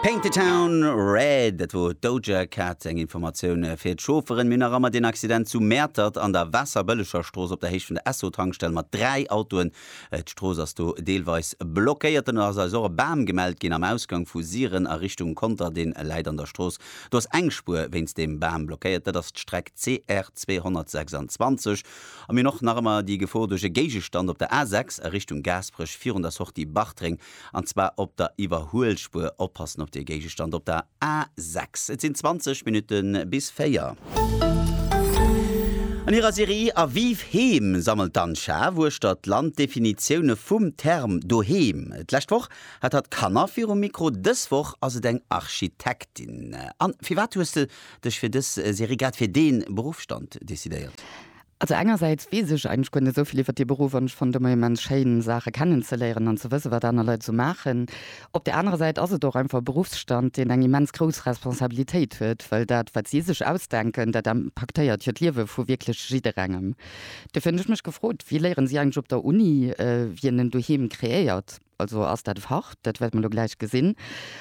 Paint the town red, dat wor d'Doja Cat. Eng Informatioun fir d'Chaufferen, Mir hunn nach ëmmer deen Accident zu Mäertert an der Waasserbëllegerstrooss op der Héicht vun der Esso-Tankstell mat 3 Autoen. D'Strooss ass do deelweis blockéiert. Dann ass eis och e Bam gemellt ginn am Ausgang vu Siren a Richtung Conter. Dee läit an der Strooss. Do ass eng Spuer wéinst deem Bam blockéiert. Dat ass d'Streck CR 226. A mir hunn och nach ëmmer déi Gefor duerch e Géigestand op der A6 a Richtung Gaasperech virun der Sortie Bartreng. an zwar op der Iwwerhuelspuer. Oppassen op dee Géigestand op der A 6. Et sinn 20 Minutte bis 4. An hirer Serie A Vive Heem sammelt d'Anne Schaaf uechter d'Land d'Definitioune vum Term Doheem. D'lescht Woch hat hatt Kanner virum Mikro, dës Woch ass et eng Architektin. Anne, firwat hues de dech fir dës Serie grad fir dee Beruffsstand decidéiert? Also engersäits weess ech eigentlech guer net esou vill iwwert dee Beruff an ech fannen et ëmmer immens schéin Saache kennen ze léieren an ze wësse wat aner Leit esou maachen. Op där anerer Säit ass et och einfach e Beruffsstand deen eng immens grouss Responsabilitéit huet, well dat wat si sech ausdenken, dat impaktéiert jo d'Liewe vu wierklech jidderengem. Dofir hunn ech mech gefrot, wéi léieren si eigentlech op der Uni, wien en Doheem kreéiert? Also ass dat Fach, dat wäerte mer elo gläich gesinn.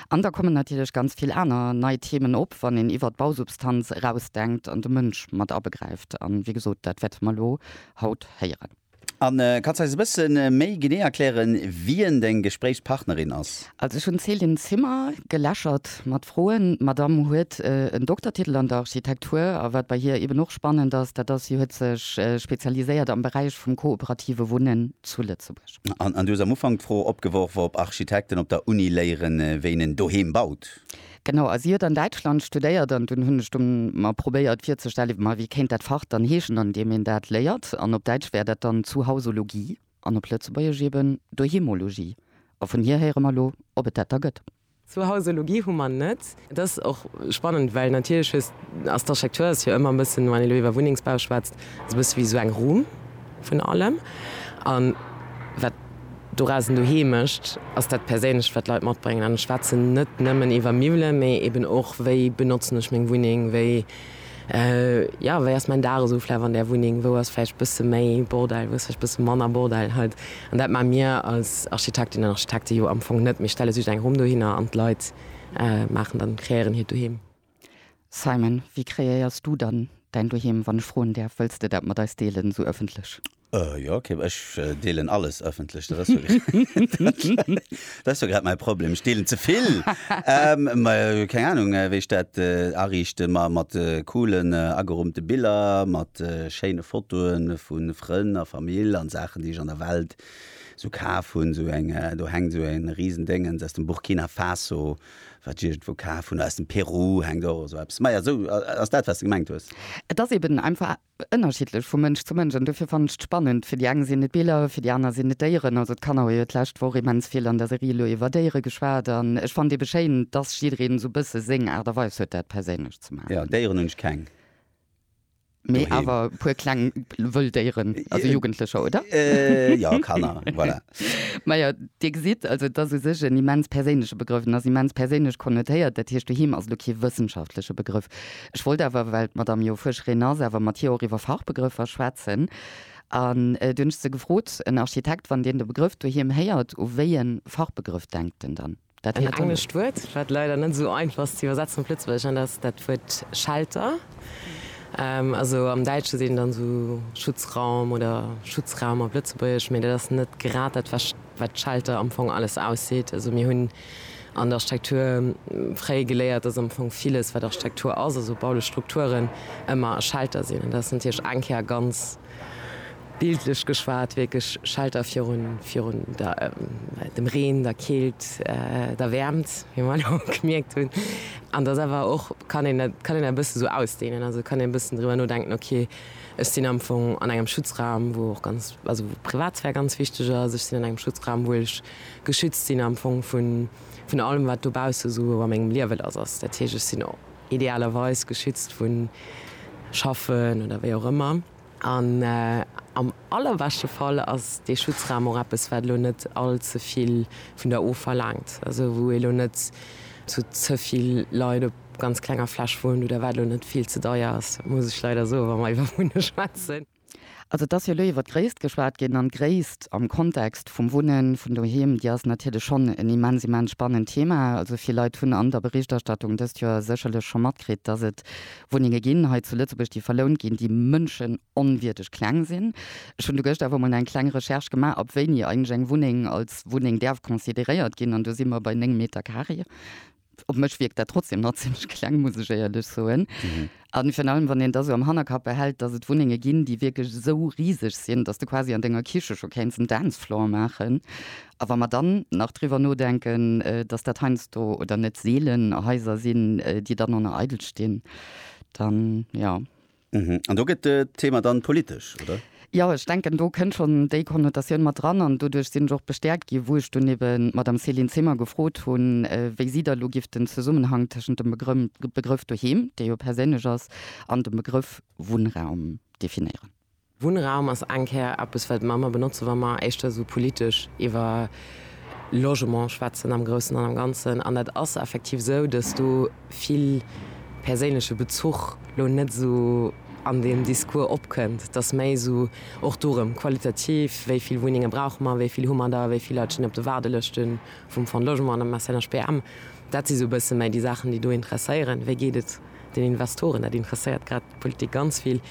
An da kommen natierlech ganz vill aner nei Themen op, wann een iwwert d'Bausubstanz erausdenkt an de Mënsch mat abegräift. An, wéi gesot, dat wäerte mer elo haut héieren. A kanns eis e bësse méi genee erklären, wien deng Gespréichspartnerin ass? Also ech hunn d'Céline Zimmer geläschert mat Froen. D'Madame huet en Doktertitel an der Architektur. A wat bei hir eben och spannend ass, dat ass, si huet sech spezialiséiert am Beräich vum kooperative Wunnen zu Lëtzebuerg. An du hues am Ufank d'Fro opgeworf, ob Architekten op der Uni léieren, wéi een en Doheem baut. Genau, a si huet an Däitschland studéiert. An dunn hunn ech du mer probéiert virzestellen, ma wéi kéint dat Fach dann heeschen, an deem een dat léiert. An op Däitsch wär dat dann Zuhausologie an op Lëtzebuergesch eben Doheemologie. A vun hir héiere mer elo, ob et dat da gëtt. Sou Hausologie hu mer net. Et ass och spannend, well natierlech hues, ass d'Architektur ass jo ëmmer e bëssen, wann een elo iwwer Wunnengsbau schwätzt, ass e bësse wéi esou eng Rumm vun allem. A wat dorausen doheem mécht, ass dat Perséinlecht, wat d'Leit matbréngen. An ech schwätzen net nëmmen iwwer Miwwelen, mee eben och, wéi benotzen ech meng Wunneng, wéi, Jo, wéi ass mäin Dag esou vläicht an där Wunneng? Wou ass vläicht bësse méi Bordell, wou ass vläicht bësse manner Bordell haut? An dat maache mir als Architektinnen an Architekte jo am Fong net. Mir stelle just eng Rumm dohinner an d'Leit maachen dann, kreéieren hiert Doheem. Simon, wéi kreéiers du dann däin Doheem, wann ech froen däerf? Wëlls de dat mat eis deelen, esou ëffentlech? Jo, ok, ech deelen alles ëffentlech, dat ass jo grad mäi Problem, ech deelen ze vill. Mä keng Anung, wéi ech dat ariichte ma mat coolen ageroumte Biller, mat schéine Fotoe vu Frënn a Famill an Saachen, déi ech an der Welt esou kaf hunn. Esou eng, do hänkt esou e Risendéngens aus dem Burkina Faso, wat ech iergendwou kaf hunn, aus dem Peru hänkt och esou eppes. Maja, esou ass dat, wat s de gemengt hues. Et ass eben einfach Ënnerschiddlech vu Mënsch zu Mënsch an dofir fannen ech et spannend. Fir déi eng sinn et Biller, fir déi aner sinn et Déieren. Also d'Kanner hu jo d'lescht Woch immens vill an der Serie elo iwwer Déiere geschwat an ech fannen ebe schéin, dass jiddereen esou e bësse seng Aart a Weis huet dat perséinlech ze maachen. Jo, Déieren hunn ech keng. Mee awer e puer kleng wëll Déieren, also Jugendlecher, oder? Jo, Kanner, voilà. Majo, Dir gesitt, also et ass u sech en immens perséinleche Begrëff, en ass immens perséinlech konnotéiert. Dat heescht, doheem ass elo kee wëssenschaftleche Begrëff. Ech wollt awer, well d'Madame jo Fuerscherin ass, awer mat hir och iwwer Fachbegrëffer schwätzen. An du hunn ech se gefrot, en Architekt, wann deen de Begrëff doheem héiert, u wéi e Fachbegrëff denkt en dann? Dat En héiert en. englescht Wuert, wat leider net esou einfach ass ze iwwersetzen op Lëtzebuergesch, an dat ass dat Wuert Shelter. Also am Däitsche seet een dann esou Schutzraum oder Schutzraum op Lëtzebuergesch, mee dat ass net grad dat, wat Shelter am Fong alles ausseet. Also mir hunn. An der Architektur fréi geléiert, dass am Fong villes, wat Architektur ass, also baulich Strukturen, ëmmer e Schelter sinn. An dat ass natierlech eng Kéier ganz bildlech geschwat wierklech e Schelter virun, virun der, dem Reen, der Keelt, der Wäermt, wéi mer elo gemierkt hunn. An dass awer och, kann een dat, kann een dat e bëssen esou ausdehnen, also kann een e bëssen driwwer nodenken, okay, ech sinn am Fong an engem Schutzraum, wou och ganz, also wou d'Privatsphär ganz wichteg ass, ech sinn an engem Schutzraum, wou ech geschützt sinn am Fong vun allem wat dobausse esou a mengem Liewe lass ass. Dat heescht ech sinn idealerweis geschützt vu Schaffen oder wéi och ëmmer an am allerbeschte Fall ass dee Schutzraum och eppes wat elo net all ze vill vun der of verlaangt, also wou ee lo net zu ze vill Leit op ganz klenger Fläch wunnt oder wat elo net vill ze deier ass, muss ech leider soe wa mer iwwer Wunne schwätzen. Also et ass jo elo iwwert d'Gréisst geschwat ginn, an d'Gréisst am Kontext vum Wunnen, vun doheem, déi ass natierlech schonn en immens, immens spannend Thema. Also vill Leit hunn an der Berichterstattung dëst Joer sécherlech scho matkritt, dass et Wunnenge ginn hei zu Lëtzebuerg, déi verlount ginn, déi mënschenonwierdeg kleng sinn. Ech hunn du gëscht awer mol eng kleng Recherche gemaach, ab wéini eigentlech eng Wunneng als Wunneng däerf consideréiert ginn, an do si mer bei néng Meter carré. op mech wierkt dat trotzdem nach zimlech kleng, muss ech éierlech soen. A virun allem, wann een da sou am Hannerkapp behält, dass et Wunnenge ginn, déi wierklech esou riseg sinn, dass de quasi an denger Kiche scho kéints en Dance floor maachen. A wa mer dann nach driwwer nodenken, dass dat heiansdo oder net seelen Haiser sinn, déi dann en a eidel stinn, dann, jo. An do gëtt d'Thema dann politesch, oder? Jo, ech denken, do kënnt schonn déi Konnotatioun mat dran. An doduerch sinn ech och bestäerkt ginn, wou ech dunn eben d'Madame Céline Zimmer gefrot hunn, wéi si da elo giff den Zesummenhang tëschent dem Begrëff Doheem, dee jo perséinlech ass, an dem Begrëff Wunnraum definéieren. Wunnraum ass eng Kéier eppes, wat mer ëmmer benotzen, wa mer éischter esou politesch iwwer Logement schwätzen am Groussen an am Ganzen. An dat ass effektiv esou, dass do vill perséinleche Bezuch lo net esou an deem Discours opkënnt, dass méi esou och dorëm qualitativ, wéi vill Wunnenge brauche mer, wéi vill hu mer der, wéi vill Leit stinn op de Waardelëschte vum Fonds de Logement an dem SNHPM. Dat si sou e bësse méi déi Saachen, déi do interesséieren, wéi geet et den Investoren, dat interesséiert grad d'Politik ganz vill.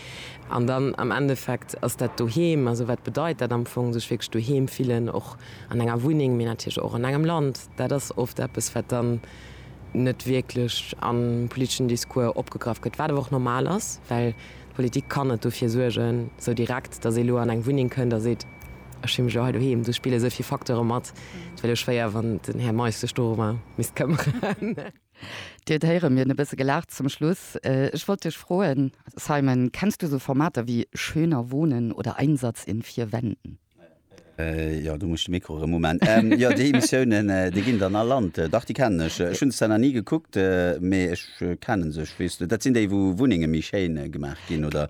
An dann am Endeffekt ass dat Doheem, also wat bedeit dat am Fong, sech wierklech doheem fillen, och an enger Wunneng, mee natierlech och an engem Land, dat ass oft eppes, wat dann, net wierklech am politeschen Discours opgegraff gëtt, wat awer och normal ass, well d'Politik kann net dofir suergen, sou direkt, datt ee lo an eng Wunneng kënnt a seet, ech hu mech elo hei doheem. Do spille souvill Facteure mat, et wär lo schwéier, wann den Här Meisch sech dorëmmer misst këmmeren. Dir héiere mir hunn e bësse gelaacht zum Schluss. Ech wollt dech froen, Simon, kenns du esou Formater wéi Schöner Wohnen oder Einsatz in vier Wänden? Jo, do muss ech de Mikro erëm uman. Jo, déi Emissiounen, déi ginn dann all Land. Dach, déi kennen ech. Ech hunn se zwar nach ni gekuckt, mee ech kenne se. Ech weess, dat sinn déi, wou Wunnenge méi schéin gemaach ginn oder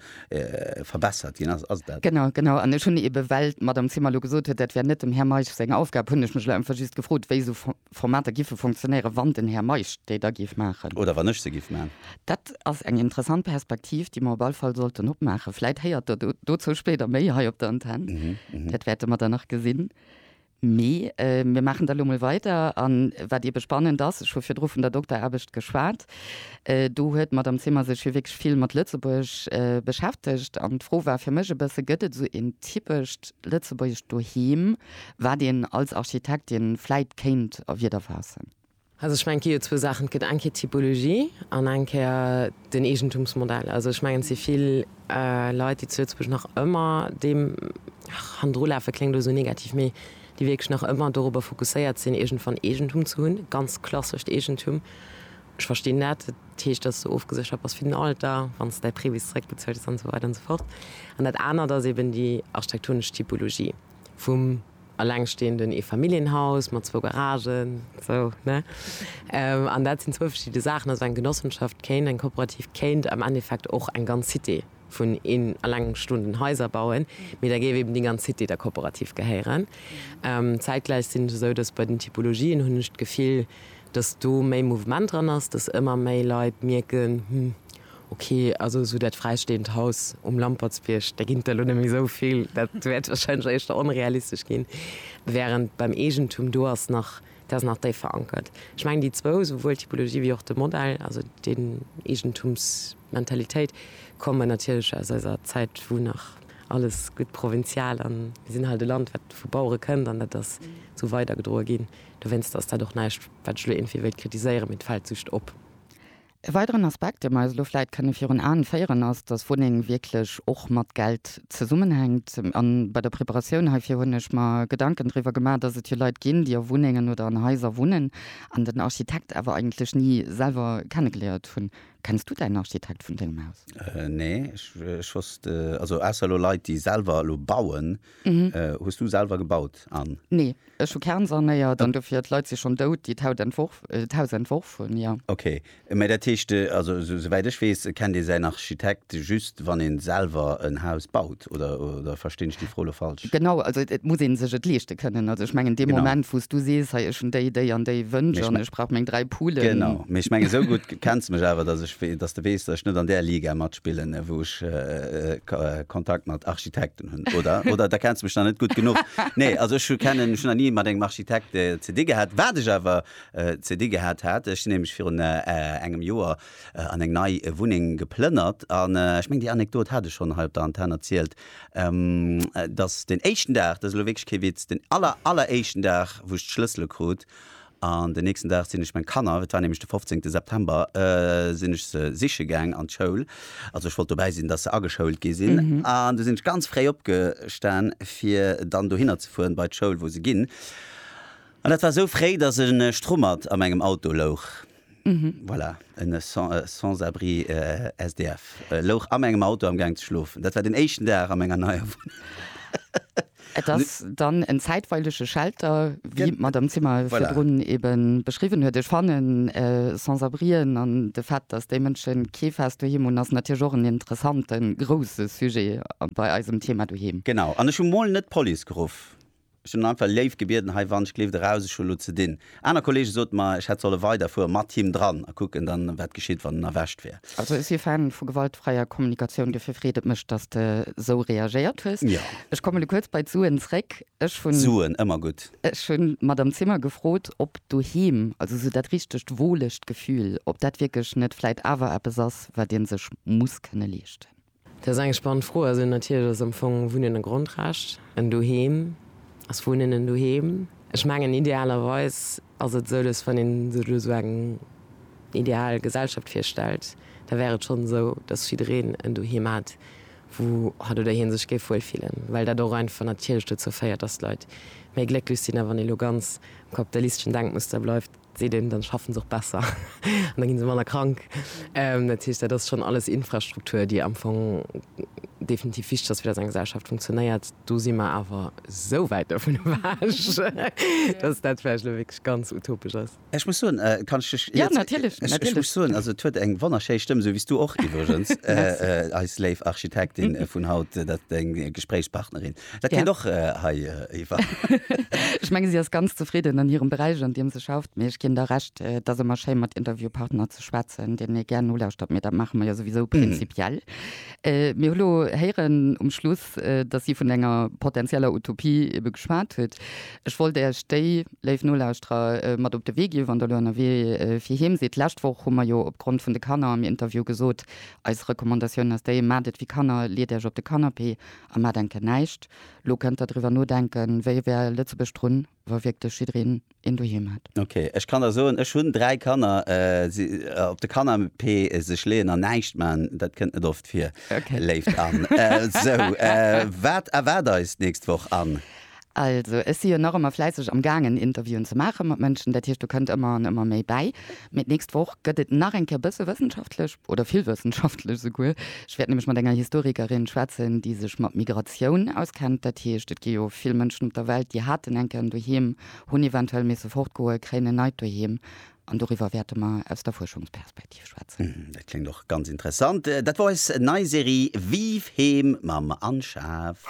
verbessert ginn. Ass et dat? Genau, genau. An ech hunn eeben, well d'Madame Zimmer elo gesot huet, dat wär net dem Här Meisch seng Aufgab, hunn ech mech elo einfach just gefrot, wéi esou Formater giffe funktionéieren, wann den Här Meisch déi da géif maachen. Oder wann ech se giff maachen. Dat ass eng interessant Perspektiv, déi mer op all Fall sollten opmaachen. Vläit héiert Der dozou spéider méi hei op der Antenn. Dat wäerte mer dann nach gesinn. Mee mir maachen da lo mol weider. A wat eebe spannend ass, ech hu virdru vun der Dokteraarbecht geschwat, do huet d'Madame Zimmer sech jo wierklech vill mat Lëtzebuerg beschäftegt. An d'Fro war fir mech e bësse, Gëtt et esou een typescht lëtzebuergescht Doheem? Wat een als Architektin vläit kéint a Wieder faassen. Also ech mengen, et gi jo zwou Saachen. Et gëtt eng Kéier d'Typologie an eng Kéier den Eegentumsmodell. Also ech mengen, et si vill Leit, déi zu Lëtzebuerg nach ëmmer deem, ach, hannendrulafe kléngt elo esou negativ, mee déi wierklech nach ëmmer dorobber fokusséiert sinn, iergendwann Eegentum ze hunn, ganz klassescht Eegentum. Ech verstinn dat. Dat heescht, dass du ofgeséchert bass fir den Alter, wann s de däi Previs zeréckbezuelt hues an esou weider an esou fort. An dat anert ass eeben déi architektonesch Typologie. vum elengstehenden Eefamilljenhaus mat zwou Garagen, sou, ne? An dat sinn zwou verschidde Saachen. Also eng Genossenschaft kéint, eng Kooperativ kéint am Endeffekt och eng ganz Cité vun elengstehenden Haiser bauen, mee da géif eben déi ganz Cité der Kooperativ gehéieren. Zäitgläich sinn ech esou, dass bei den Typologien, hunn ech d'Gefill, dass do méi Mouvement dran ass, dass ëmmer méi Leit mierken, Hm. Ok, also esou dat fräisteeënd Haus um Lampertsbierg, där ginn et der elo net méi esou vill, dat wäert warscheinlech éischter onrealistesch ginn, wärend beim Eegentum, do ass nach, dat ass nach déif verankert. Ech mengen déi zwou, souwuel d'Typologie wéi och de Modell, also déi Eegentumsmentalitéit, kommen natierlech aus eiser Zäit, wou nach alles gutt provinzial a mir sinn halt e Land, wat vu Bauere kënnt an dat ass esou weidergedroe ginn. Dowéinst ass dat och näischt, wat ech elo iergendwéi wéilt kritiséieren, mee et fält just op. E weideren Aspekt, dee mer eis elo vläit kënne virun Aen féieren, ass, dass Wunneng wierklech och mat Geld zesummenhänkt. A bei der Preparatioun heifir hunn ech mer Gedanken driwwer gemaach, dass et jo Leit ginn, déi a Wunnengen oder an Haiser wunnen an den Architekt awer eigentlech ni selwer kennegeléiert hunn. Kenns du däin Architekt vun dengem Haus? Nee, ech wosst, also ausser elo Leit, déi selwer elo bauen, Mhm. Äh, hues du selwer gebaut an? Nee, ech hu Kern sanéiert an dofir d'Leit si schonn dout, déi d'Haut entworf, äh, d'Haus entworf hunn, jo. Okay, mä dat heescht, äh, also esou esouwäit ech weess, kennt ee säin Architekt just wann ee selwer en Haus baut, oder, oder verstinn ech déi Fro lo falsch? Genau, also et muss ee sech et leeschte kënnen. Also ech mengen dee Genau. Moment wou s du sees, hei ech hunn déi, déi an déi Wënsch Mee ech an me- ech brauch meng dräi Poulen. Genau, mee ech mengen esou gutt kenns mech awer, dass ech, wee- dass de weess, dass ech net an där Liga matspillen, äh, wou ech äh, äh, Ko- äh, Kontakt mat Architekten. verstanen hun oder oder da kenns mech nach net gudd genuch. Nee also ech kennen ech hun nach nie mat engem Architekt ze di gehat. Waat ech awer ze di gehat hat, ech sin nämlech virun engem Joer an eng nei Wunneng geplënnert an ech meng déi Anekdot hat ech schon hei op der Antenn erzielt, dass den éischten Dag, dat ass elo wierklech kee Witz, den aller aller éischten Dag wou ech d'Schlëssele krut, An den nächsten Dag sinn ech meng Kanner, et war nämlech de 15 September, sinn ech se siche gaang an d'Schoul. Also ech wollt dobäi sinn, dass se ageschoult gi sinn. An du sinn ech ganz fréi opgestan, fir dann dohinner ze fueren bei d'Schoul, wou se ginn. An dat war esou fréi, dass en Strummert a mengem Auto louch. Voilà, en Sans-abri SDF louch a mengem Auto am Gaang ze schlofen. Dat war den éischten Dag a menger neier Wunneng. Et ass dann en zäitweilege Shelter, wéi d'Madame Zimmer virdrun ebe beschriwwen huet. Ech fannen, Sans-abrien an de Fait, dass déi Mënsche kee fest Doheem hunn, ass natierlech och en interessante grousse Sujet bei eisem Thema Doheem. Genau. An ech hu mol net d'Police geruff. Ech hunn en einfach léif gebieden, hei wann ech gleeft eraus, ech hu lo ze dinn. Aner Kollege soten mer, ech hätt solle weiderfuere mat him dran a kucken dann, wat geschitt, wann en erwescht wär. Also ech si Fan vu gewaltfräier Kommunikatioun, duerfir freet et mech, dass de sou reagéiert hues. Ja. Ech komme lo kuerz bei d'Suen zréck. Ech hunn. Suen, ëmmer gutt. Ech hunn d'Madame Zimmer gefrot, ob doheem, also sou dat richtegt wohlegt Gefühl, ob dat wierklech net vläit awer eppes ass, wat ee sech muss kënne leeschten. Dat ass eng spannend Fro. Also natierlech ass am Fong Wunnen e Grondrecht. En Doheem. Ass Wunnen en Doheem? Ech mengen idealerweis ass et esou, dass wann een sech elo esou eng ideal Gesellschaft virstellt, da wär et schonn esou, dass jiddereen en Doheem hätt, wou hat oder hie sech géif wuel fillen, well dat och einfach natierlech dozou féiert, dass d'Leit méi glécklech sinn. A wann ee elo ganz am kapitalisteschen Denkmuster bleift, seet een, dann schaffen se och besser an da ginn se manner krank. Dat heescht, dat ass schonn alles Infrastruktur, déi am Fong definitiv wichteg ass, fir datt eng Gesellschaft funktionéiert. Do si mer awer esou wäit dovun ewech, datt dat vläicht elo wierklech ganz utopesch ass. Ech muss soen, kann ech dech iert? Ech muss soen, also et huet eng wonnerschéi Stëmm, esou wéi du och iwwregens, eis léif Architektin vun haut, dat deng Gespréichspartnerin. Dat kéint och hei eriwwer. Ech menge si ass ganz zefridden an hirem Beräich an deem se schafft, mee ech ginn der Recht, et ass ëmmer schéi mat Interviewpartner ze schwätzen, deenen ee gär nolauschtert, mee dat maache mer jo souwisou prinzipiell. Mir hu lo héieren um Schluss, datt si vun enger potenzieller Utopie ebe geschwat huet. Ech wollt Iech déi, léif Nolauschterer, mat op de Wee ginn, wann Der elo ënnerwee fir heem sidd. D'lescht Woch hu mer jo opgrond vun de Kanner am Interview gesot, eis Recommandatioun ass déi, maacht et wéi Kanner, leet Iech op de Canapé A maat enke näischt. Lo kënnt der driwwer nodenken, wéi wär Lëtzebuerg drun, wa wierklech jiddereen een Doheem hätt. Ok, ech kann der soen, ech hunn 3 Kanner, si op de Canapé sech leeën an näischt man, dat kënnt net oft vir, léift Anne. Sou, wat erwaart eis d'nächst Woch, Anne? Also, ech si jo nach ëmmer fläisseg am gaangen, Interviewen ze maachen mat Mënschen. Dat heescht, do kënnt ëmmer an ëmmer méi bäi. Mee d'nächst Woch gëtt et nach eng Kéier bësse wëssenschaftlech, oder vill wëssenschaftlech esouguer. Ech wäert nämlech mat enger Historikerin schwätzen, déi sech mat Migratioun auskennt. Dat heescht, et gi jo vill Mënschen op der Welt, déi haten eng Kéier en Doheem, hunn eventuell misse fortgoen, kréien en neit Doheem. An doriwwer wäerte mer aus der Fuerschungsperspektiv schwätzen. Dat kléngt och ganz interessant. Dat war eis nei Serie Vive Heem mam Anne Schaaf.